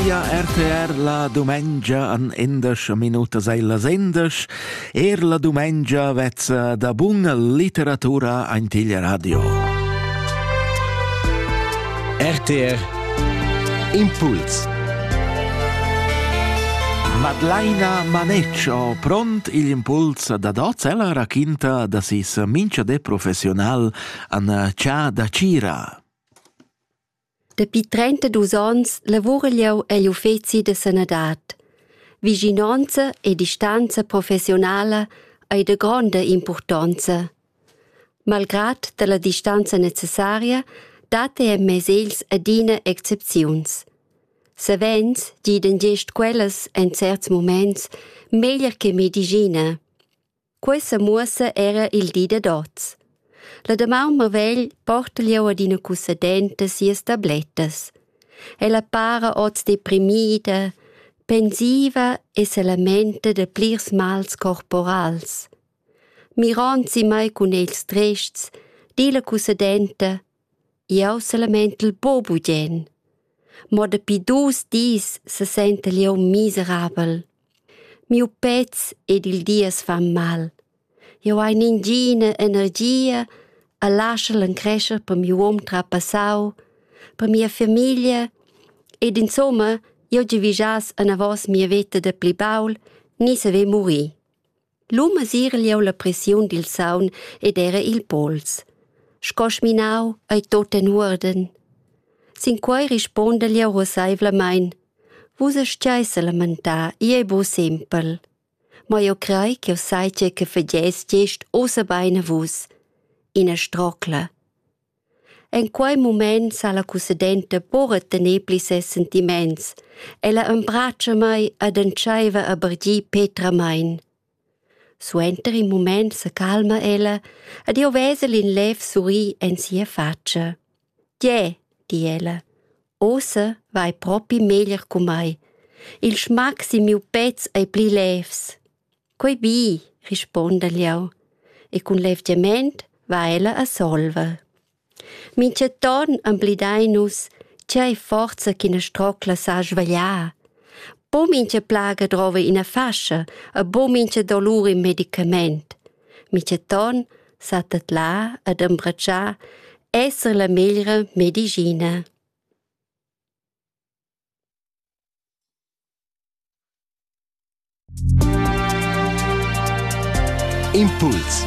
Ia RTR la dumengia an endasch minutas ei las endasch. Er la dumengia vezza da buna literatura antiglia radio. RTR Impuls Madlaina Maneccio pront il impuls da dots ella raquinta da sis mincha de professional an Cia da Cira. Dapi trentaduos ons lavura jeu egl uffeci da sanadad. Vischinonza e distanza professionala ei da gronda impurtonza. Malgrad dalla distanza necessaria dat ei en mes egls adina excepziuns. Savens gidan gest quellas en certs moments meglier che medischina. Quei semuossa era il di dad oz. La damaun marvegl porta jeu adina cussadenta sias tablettas. Ella para oz deprimida, pensiva e se lamenta da plirs mals corporals. Mirond si mai cun ils trests, di la cussadenta Jeu selamentel buc bugien. Mo dapi dus dis sesentel jeu miserabel. Miu pez ed il dies fan mal. Jeu hai ningina energia e laschel encrescher per miu um trapassau, per mia famiglia ed insumma jeu giavischass anavos mia veta da pli baul ni saver murir. Lu mesir leu la pressiun dil saun ed era il pols. Sco sminau ei tut en uorden. Sin quei rispondel jeu ruasseivlamein. Vus astgeis lamentar, ei ei buc sempel. Ma jeu crei ch'jeu sai tgei che fagess gest ussa bein a vus. Ina strocla. En quei mument sa la cussedenta buca tener pli ses sentiments. Ella embratscha mei ed entscheiva a bargir petramein. Suenter in mument secalma ella ed jeu vesel in lev surrir en sia fatscha. Tge, di ella, ossa vai propi meglier cu mei. Il schmac sin miu pez ei pli levs. Quei bi, rispondel jeu e cun levgiament va ella a solver. Mintgaton emblidein nus tgei forza ch'ina strocla sa svegliar. Bu mintga plaga drova ina fascia e bu mintga dolur in medicament. Mintgaton sa tedlar ed embratschar esser la meglra medicina. Impuls